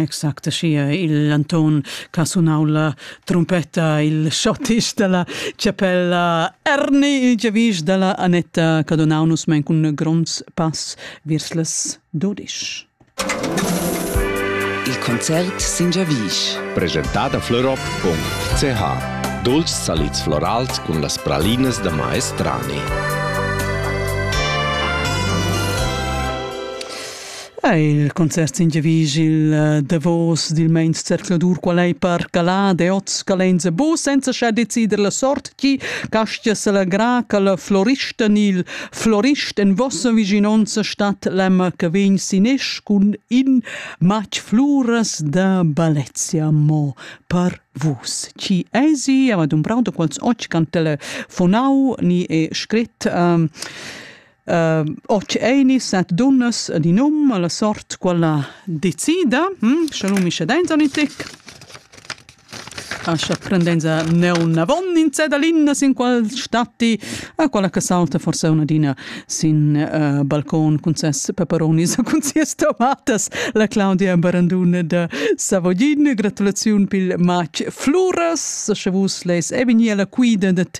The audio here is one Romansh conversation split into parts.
Exact schia il Anton ch'ha sunau la trompetta, il schottisch dalla chapella Erni, giavisch dalla Anetta Cadonau nus mein cun gronds pass viers las dudisch. Il concert sin giavisch. Presentada Florop con CH. Dolci salids florals cun las pralinas da maestrani. Ei il concert s'ingiavisch il eh, davos dil meins zercladur qual ei per calade oz calenza bu senza scha decider la sort chi castia selagra che la florista nil florist en vossa viginonza stat l'emma che vegn sinesch cun in matg fluras da Balezia mo per vus. Ci esi, aber dum brauto quals och can telefonau ni e scrit um, Ehm o tscheinis set dunnas ed in um alla sort quella decida, hm, sche l'um ischadenza o ün tic. Ascha prendenza neunavon in zedalinas in quel statti, a quella che sauta forsa una adina sin ehm balcon cun ses peperonis e cun sias tomatas, la Claudia Barandun da Savogin. Gratulaziun pil matg Fluras, sche vus leis e vegnir alla quida dad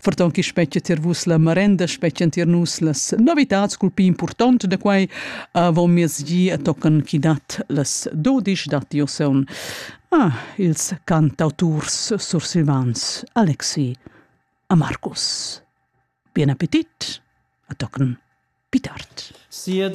ferton chi spetgia tier vus la marenda, spetgian tier nus las novitats cul pi important da quai avon miezgi e tocan chi dat las dodisch datti oseun. Ah, ils cantauturs sursilvans Alexi a Markus. Bien appetit, a tocan pi tard. Sia